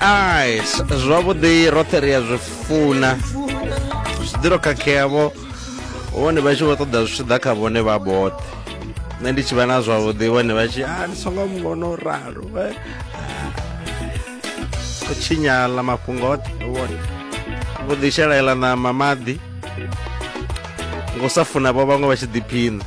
eyes zwavhuḓi roṱhe ri a zwi funa zwi ḓiro khakhea vho vhone vha tshi vho ṱoḓa zwi tshi ḓa kha vhone vha boṱhe nṋe ndi tshi vha na zwavhuḓi vhone vha tshi a ah, ndi songo muvhona u ralo eh. u tshinyala mafhungo oṱhe vhone vho ḓishelaela ṋama maḓi ngo sa funa vho vhaṅwe vha tshi ḓiphina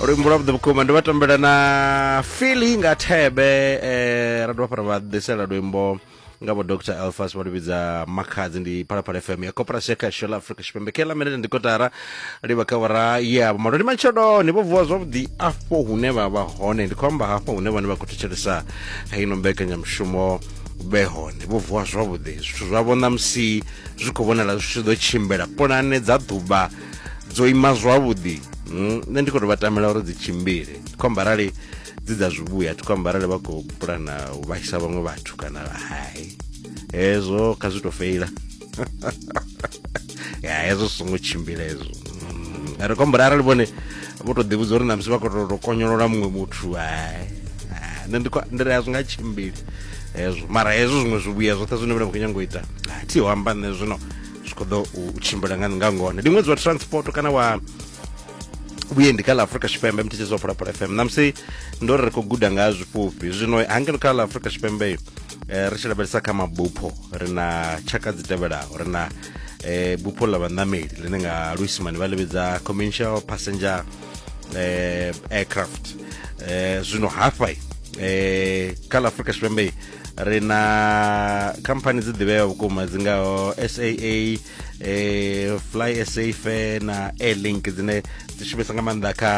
luimbo lwa vhuḓi vhukuma ndi vha tambela na fili nga thebe eh, ra dovha fhara vha ḓisela luimbo nga vho dr elfas vha luvhidza makhadzi ndi phalaphala fm ya coperasi ya kasho la afrika tshipembe kela minete ndi kotara livha kha vhora ya vhumalo ndi matsheloni vho vuwa zwavhuḓi afho hune vha vha hone ndi khou amba hafho hune vhane vha khou thetshelesa heino mbekanyamushumo vhe hone vho vuwa zwavhuḓi zwithu zwavho ṋamusi zwi khou vhonala zwi tshi ḓo tshimbila pulane dza ḓuvha dzo ima zwavhuḓi hmm, nṋe ndi khou tou vha tamela uri dzi tshimbile ndi khou amba arali dzi dza zwivhuya thi khou amba arali vha khou pulana u vhaisa vhaṅwe vhathu kana hai hezwo kha zwi tou feila ya hezwo zwi songo tshimbila hezwo hmm, ri khou amba uri arali vhone vho tou ḓivhudza uri namusi vha khou tou konyolola muṅwe muthu hai nṋe ndi ri a zwi nga tshimbili hezwo mara hezwo zwiṅwe zwivhuya zwoṱhe zwine vhone vha khou nyanga u ita thi ho amba nṋe zwino zwi khou ḓo u tshimbila nga nga ngona ndi ṅwedzi wa transport kana wa vhuendi kha ḽa afrika tshipembe mthetshedzo wa phalaphala fm namusi ndo ri ri khou guda nga zwifhufhi zwino hangeno kha ḽa afrika tshipembe eh, ri tshi lavhelesa kha mabupho ri na tshaka dzi tevhelaho ri na eh, bupho ḽa vhaṋameli ḽine nga luisimani vha ḽivhidza commercial passenger eh, aircraft eh, zwino hafha eh, kha ḽa afrika tshipembe ri na khamphani dzi ḓivheaho vhukuma dzi ngaho saa eh, fly sa fair na airlink dzine dzi shumisa nga maanḓa kha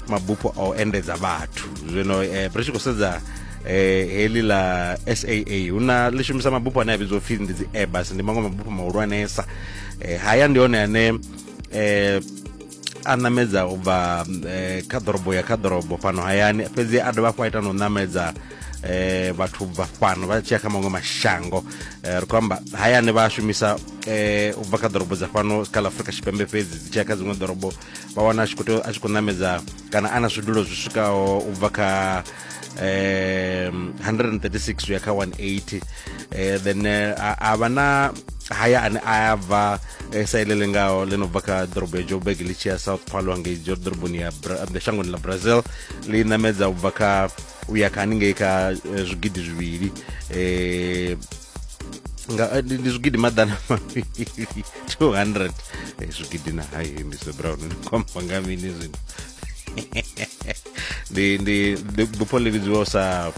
mabufho a u endedza vhathu zwino eh, ri tshi khou sedza eh heli la SAA huna ḽi shumisa mabufho ane a vhidzwa upfhi ndi dzi Airbus ndi maṅwe mabufho mahulwanesa eh haya ndi hone ane eh a ṋamedza u bva eh, kha ḓorobo ya kha ḓorobo fhano hayani fhedzi a dovha hafhu a ita na u ṋamedza eh, vhathu bva fhano vha tshiya kha maṅwe mashango eh, ri khou amba hayani vha shumisa eh, u bva kha ḓorobo dza fhano kha ḽa afurika tshipembe fhedzi dzi tshiya kha dziṅwe ḓorobo vha wana a tshi khou tea- a tshi khou ṋamedza kana a na zwidulo zwi swikaho u bva kha um 136 uya kha 180 eh, then eh, a vha na haya ane a bva eh, sa ile lengaho ḽi no bva kha ḓorobo ya joburg ḽi tshi ya south paulo hangei ḓoroboni ya shangoni ḽa brazil ḽi namedza u bva kha u ya kha haningei kha zwigidi zwivhili um nga eh, ndi zwigidi maḓana mavhili 200 eh, zwigidi na hai mr brown ni khomba nga mini zwino ndi ndi ndi bupho ḽi vhidziwaho sa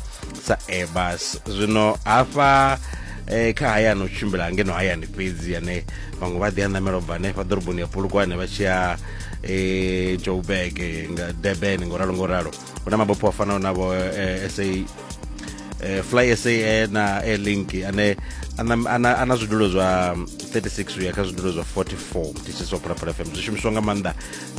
sa airbus zwino hafha eh, kha hayani u tshimbila ngeno hayani fhedzi yane vhaṅwe vha ḓi a ṋamela u bva hanefha ḓoroboni ya pulukwane vha tshi ya eh, joburg eh, nga durban ngo ralo ngo ralo hu na mabupho a fanaho na vho eh, sa eh, fly sa eh, na airlink ane ana- ana ana zwidulo zwa 36 uya kha zwidulo zwa 44 mthisiso wa phalaphala fm zwi shumiswa nga maanḓa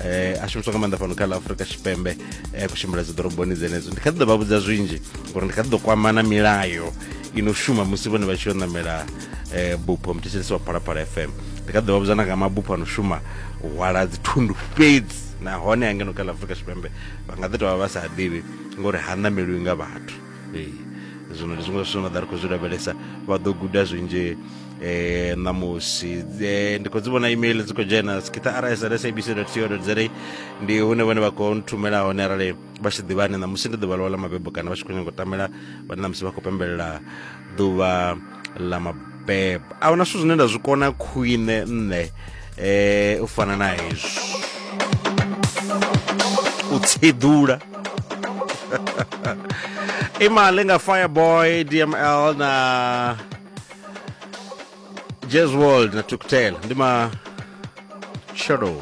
eh, a shumiswa nga maanḓa fhano kha ḽa afurika tshipembe eh, kushimbila dzi ḓoroboni dzenedzo ndi kha ḓi ḓo vha vhudza zwinzhi ngori ndi kha ḓi ḓo kwamana milayo i no shuma musi vhone vha tshi yo ṋamela eh, bupho muthetshelesi wa phalaphala fm ndi kha ḓi ḓo vha vhudza na nga mabupho ano shuma u hwala dzithundu fhedzi nahone angeno kha ḽa afurika tshipembe vha nga ḓi tovha vha sa ḓivhi ngori ha ṋameliwi nga vhathu ee zwino ndi zwiṅwe zwa zwithu na ḓa ri khou zwi lavhelesa vha ḓo guda zwinzhi eh ṋamusi eh, ndi khou dzi vhona email dzi khou dzhena skitha rsl sabc co za ndi hune vhone vha khou nthumela hone arali vha tshi ḓivha ane ṋamusi ndi ḓuvha ḽawe ḽa mabebo kana vha tshi khou nyanga u tamela vhane ṋamusi vha khou pembelela ḓuvha ḽa mabebo a huna zwithu zwine nda zwi kona khwine nṋe um u fana na hezwi u tshedula imali nga fireboy dml na jazz world na tuktel ndi ma shadow